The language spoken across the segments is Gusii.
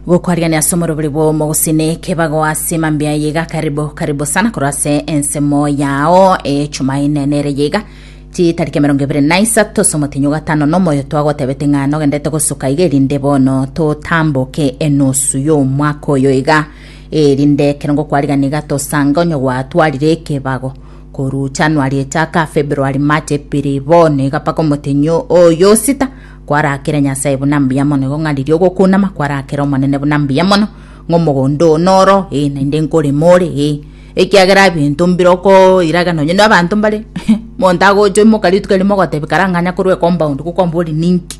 gokwariania ase omorobori bw'omogusini kebago ase mambia ya iga karibu karibu sana korwa ase ensemo yao echumaine nere yiga chitariki emerongo ebere na isato ase omotinyo gatano na omoyo twagotebete ng'a nogendete gosuka iga erinde bono totamboke enusu y'omwaka oyo iga erinde ekero ngokwarigania iga tosanga onye gwatwarire ekebago korwa januari echaka februari march epiri bono iga mpaka omotinyo oyo sita Kwarakere Nyasae buna mbuya mono, igo ng'a riria ogokunama kwarakere Omonene buna mbuya mono, ng'a omogondo oo noro, ee, naende nkorema ore, ee, ekiagera ebinto mbirokoiraga nonye na abanto mbare monto agocha oimoka rituko erimo ogotebia kare ang'anya korwa ecompund gokwamba ore ninki?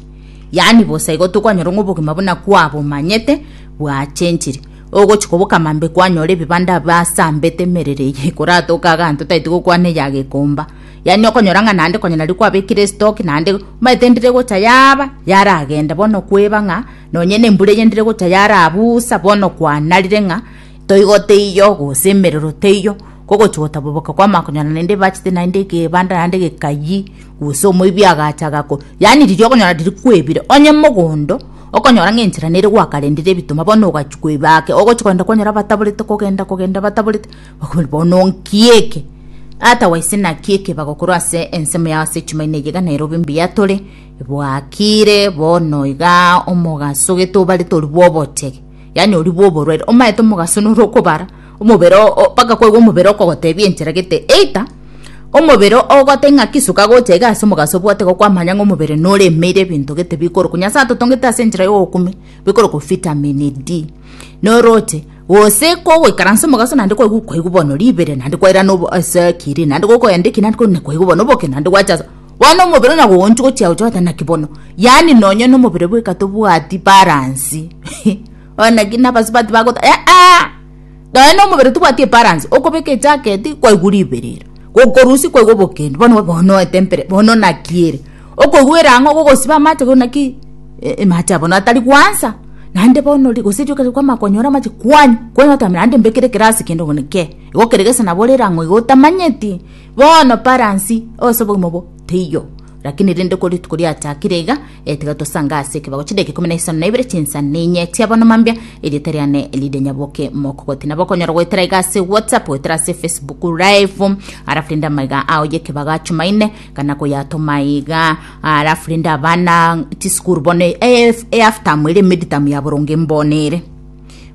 Yaani bosa igo tokwanyora ng'a obogima buna kwabomanyete bwachenchire. Ogochia koboka mambe kwanyora ebibanda basambete emerero eye koratoka iga abanto tari togokwana eya gekomba. Yaani okonyora ng'a naende konya nario kwabekire esitoki naende omanyete endire gocha yaba yaragenda bono kweba ng'a nonye nembura eye ndire gocha yarabusa bono kwanarire ng'a toigo teiyo gose emerero teiyo kogochia gotaboboka kwamanya konyora naende ebachete naende egebanda naende egekayie gose omoibi agacha agako yaani riria okonyora riria kwebire onye mogondo okonyora ng'a enchera nere gwakarendire ebituma bono ogachia kweba ake ogochia kogenda kwanyora abataborete kogenda kogenda abataborete Okorwa bono nki eke? Tata waise naki eke bagokora ase ensemo yao ase chimaina eyio iga Nairobi mbuya tore bwakire bono iga omogaso gete obarete ori bwa obochege yaani ori bwa oborwaire omaete omogaso nore okobara omobere mpaka kwaigwa omobere okogotebia enchera gete either omobere ogote ng'aki soka gocha iga ase omogaso obwate iga kwamanya ng'a omobere noremeire ebinto gete bikorokwa nyasae atotongete ase enchera ya obokumia bikorokwa vitamin D noroche Gose kogoikaransa omogaso naende kwaigwa kwaigwa bono ribere naende kwairana obo ase kiri naende gokoenda eki naende kona kwaigwa bono oboke naende gwacha ase bono omobere ona goonchu gochia gocha goteba naki bono yaani nonye na omobere bweka tobwati balance bono naki na abasubati bagoteba eeh nonye na omobere tobwati ebalance okobeka ejaketi kwaigwa ribere ere gokorusia kwaigwa oboke ende bono bono etempera bono naki ere. Okogwera ang'o gogosiba amache korwa naki amache abo natari gwansa? Naende bono ri, gose rioka ri kwamaka konyora amache kwanywa, kwanywa otamera naende mbekere ekero ase kende omonwe kee. Igo kere gese nabo orere ang'o igo otamanyeti? Bono balance o ase obogima obo teiyo. Lakini rende korwa rituko riachakire iga, eh tiga tosange ase ekebago chidakika ikomi na isano na ibere chinsa ninye chia bono mambia, erieta riane rire Nyaboke Mokogoti. Nabo okonyora goetera iga ase WhatsApp, goetera ase Facebook live, alafu rende amaiga ao y'ekebago a Jumaine, kana koyatoma iga alafu rende abana chisukuru bono eaftamu ere meditamu ya boronge mbono ere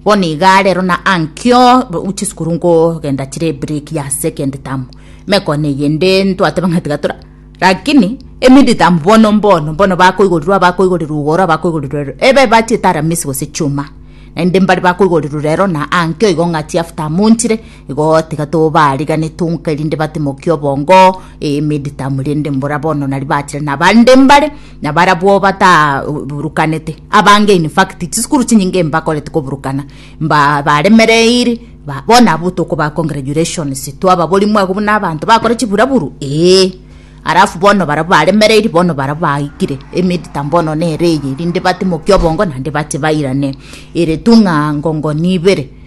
bono iga rero na ankio chisukuru nkogenda chire ebreak ya second tamu mekone eyende ntwateba ng'a tiga tora lakini emeditamu bono mbono mbono bakoigorirwa abakoigorirwa igoro abakoigorirwa ero ebe bachiete aramisi gose chuma naende mbare bakoigorirwa rero na ankio igo ng'a chiaftamu nchire Igo tiga tobaarigane tonka erinde batimokie obongo emeditamu rende mbora bono nari bachire nabande mbare nabarabwo bataburukanete abange in fact chisukuru chinyinge mbakorete koburukana mba baremereire ba, bono abwo tokoba congratulations twababori mwago buna abanto bakore chiburaburu ee alafu bono barabwo baremereire bono barabwo baikire emeditamu bono nere eye erinde batimokie obongo naende bache bairane ere tu ng'a ngongo nibere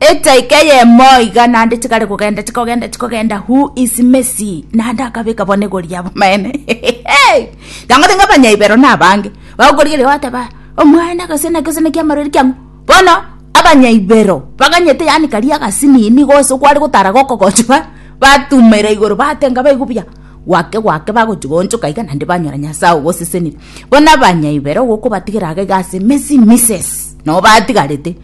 Etaika eyemo iga naende chigare kogenda chikogenda chikogenda who is Messi naende akabeka bono egori ya bomaene tangote ng'a abanyaibero na abange bagokorigeria bateba omwana agasena gesena kia marori kiang'o bono abanyaibero baganyete yani karia agasini nigo ase kware gotara gokogochwa batumera igoro batenga baigu buya gwake gwake bagochigonchoka iga naende banyora Nyasae ogosesenire bono abanyaibero gokobatigera iga ase Messi Misses nabo batigarete.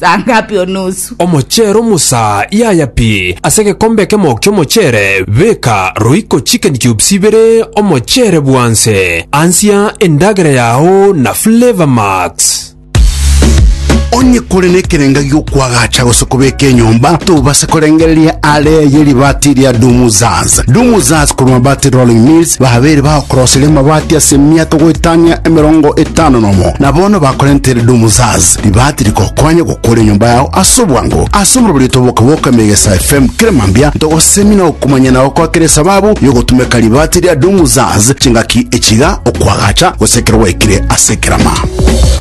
saa ngapi onusu? Omochero musaa yaya pi ase egekombe ekemo ki'omochere beka roiko chicken cubes ibere omochere bwanse ansia endagera yao na flavour max. Onye kore nekerenga gi'okwagacha gose kobeka enyomba, tobase korengereria are eye ribaati ria Dumuzaz. Dumuzaz korwa Mabati Rolling Mills babeire bagokoroseria amabati ase emiaka goetania emerongo etano nomo, na bono bakorentere Dumuzaz. Ribaati rikokonye gokora enyomba yao ase obwango. Ase omoroberio otoboke bw'oka Megesa FM kera mambia ntogosemia na okomanyana oko akera esababu y'ogotumeka ribaati ria Dunguzaz chingaki echiga, okwagacha, gose ekero gwaikire ase ekerama.